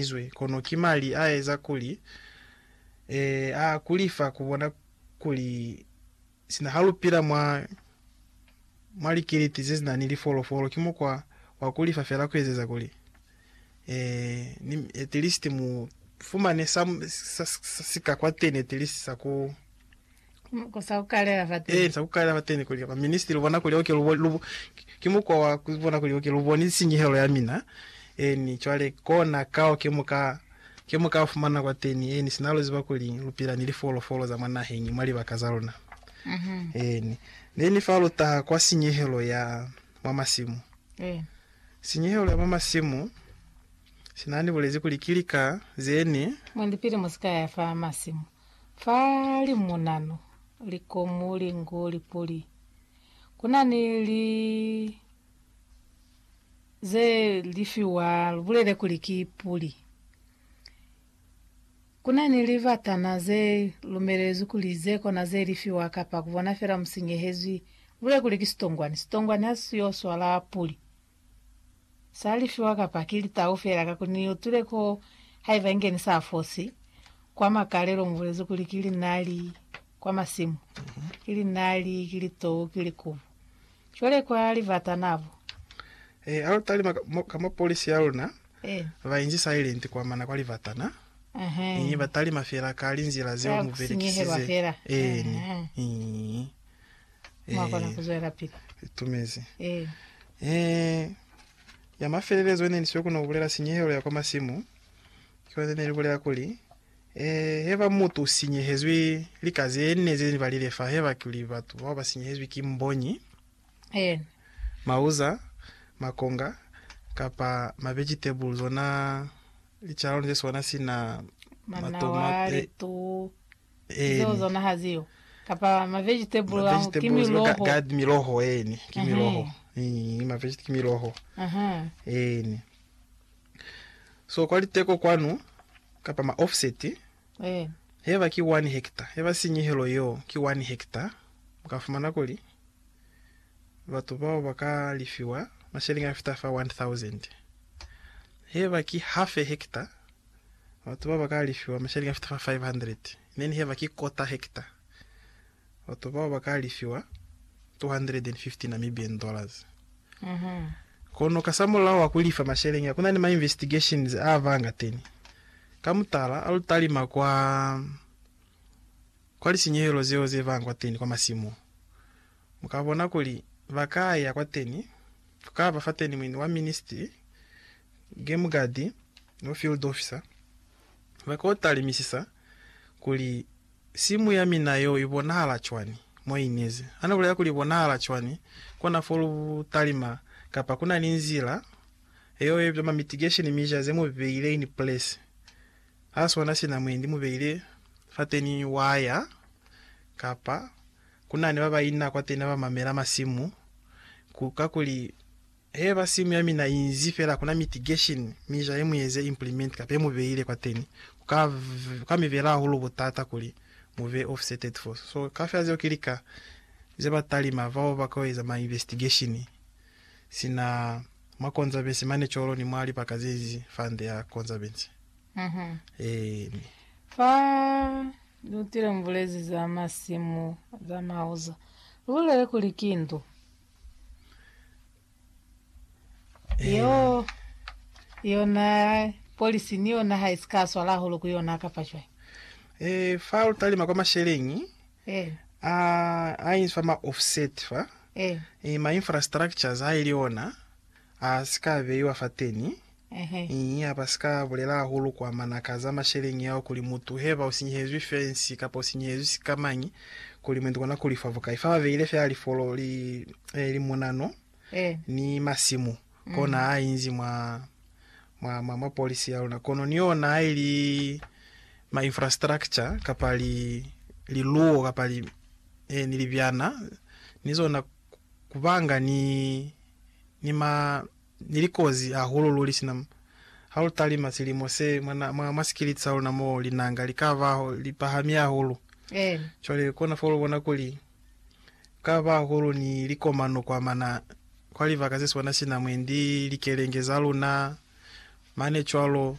izwe, kono ki mali a eza kuli, ee, a kuli fa ku bona kuli sina ha lu pila mwa, mwa likiliti ze sina ni lifolofolo, ki mukwa wa kuli fa fela ku ezeza kuli, ee, ni at least mu fumane sa, sa, sa si ka kwateni at least sa ku, Muko sa ku kalela fa teni. Ee, sa ku kalela fa teni kuli baministili lubona kuli oke lubo, lubo, ki mukwa wa ku bona kuli oke luboni sinyehelo ya mina. Eeni, cwale kona kao ke mu ka, ke mu ka fumana kwa teni. Eeni, sina lu ziba kuli lu pila ni lifolofolo za mwa naheñi, mwa libaka za luna. Eeni. Neni fa lu taha kwa sinyehelo ya mwa masimu. Eeni. Sinyehelo ya mwa masimu, sina ni bulezi kuli ki lika zeni. Mwendipili mu si ka ya fa masimu. Fa limunanu likomu lingu lipuli, kuna ni li ze lifiwa lubulele kuli ki puli. Kuna ni libatana ze lumelezwi kuli ze kona ze lifiwa kapa kubona fela musinyehezwi lubulele kuli ki sitongwani. Sitongwani ha si yo swala puli. Sa lifiwa kapa ki litau fela ka kuli ni utwile ko haiba inge ni sa fosi. Kwa makalelo mu bulezi kuli ki linali kwa masimu, ki linali, ki litou, ki likubu. Cwale kwa libata na bo. Eh, ha lu tali ma, mo, ka mo polisi ya luna Eh, ba inzi silent kwa mana kwa libata na. ehe. Eh, ba talima fela ka linzila zeo Ka mu ku sinyehelwa belekisize. fela. Eeni. Ehe. Eh. Mwa kona ku zwelapili. Itumezi. Ee. Ya mafelelezo ine ni siyo kono ku bulela sinyehelo ya kwa masimu, ki yona ine ni bulela kuli, Ee, he ba mutu u sinyehezwi lika ze ne ze balile fa, heba kuli batu bao ba sinyehezwi ki mbonyi, Eena. mauza, makonga, kapa ma vegetable, zona licalano ze sona sina Manawa, matomate, litu, Zeo Eeni. zona ha ziyo. Kapa ma vegetable Ma ao ki vegetables, ba ga- miloho. garden, miloho, eeni. Ki Ehe. miloho. Ii, ma vegeta- ki miloho. Aha. Eeni. So kwa liteko kwanu, kapa ma offset, Eeni. heba ki one hectare, heba sinyehelo yeo ki one hectare, mu ka fumana kuli batu bao ba ka lifiwa masheleng a fita fa 1000. Heba ki half a hectare, Batu bao ba ka alifiwa masheleñi a fita fa 500, ne ni heba ki kota hekta. Batu bao ba ka alifiwa 250 Namibian dollars. Kono kasamulaho wa ku lifa masheleñi a, ku na ni ma investigations a ba angateni. Ka mutala, a lu talima kwa, kwa lisinyehelo zeo ze banga kwateni kwa masimu, mu ka bona kuli ba ka ya kwateni, ku ka ba fateni muini wa Ministry, Game Guard, Bo field officer ba ka u talimisisa kuli, Simu ya mina yo i bonahala cwani mo i nezi? Ha ni bulela kuli i bonahala cwani, kona fo lu talima kapa ku na ni nzila yeo ye bizwa ma mitigation mizha ze mu beile in place. Ha swana sina mwendi mu beile fateni waya kapa ku na ni ba ba ina kwateni ba ba mamela masimu ku, kakuli, Heba simu ya mina inzi fela kuna mitigation mi jahe mueze implement kapa yemu beile kwateni kuka kuka mi bela hahulu butata kuli mube offseted fo so kafela zeo ki lika ze ba talima bao ba kao eza ma investigation sina mwa konzabensi mane colo ni mwa libaka zenzi fande ya konzabensi eeni. Fa lutile mubulezi za masimu za mauzo, lubulele kuli ki ndu. Yo yona polisi ni yona ha isi ka swala hahulu ku yona kapa cwai? Eh, fa lu talima kwa masheleñi Eh, a a inzwi fa ma offset fa eh, eh, ma infrastructures ha ili ona a si ka beiwa fateni Ii, Ha ba si ka bulela hahulu kwa manaka za masheleñi ao kuli mutu heba u sinyehezwi fensi kapa u sinyehezwi sikamañi, kuli mwendi kona ku lifa bukai. Fa ba beile fela lifolo li, e, li munano ni masimu, kona ha inzi mwa, mwa, mwa, mwa polisi ya luna. Kono ni yona ha ili ma infrastructure kapa li, liluwo kapa li, e, ni libyana, ni zona, ku, ku banga ni, ni ma, Ni likozi hahulu luli sina ha lu talima silimo se mwa, mwa, mwa sikiliti sa luna mo linanga li ka ba li pahami hahulu. Cwale kona fa lu bona kuli ku ka ba hahulu ni likomano kwa mana, kwa libaka ze swana sina mwendi likelenge za luna mane cwalo.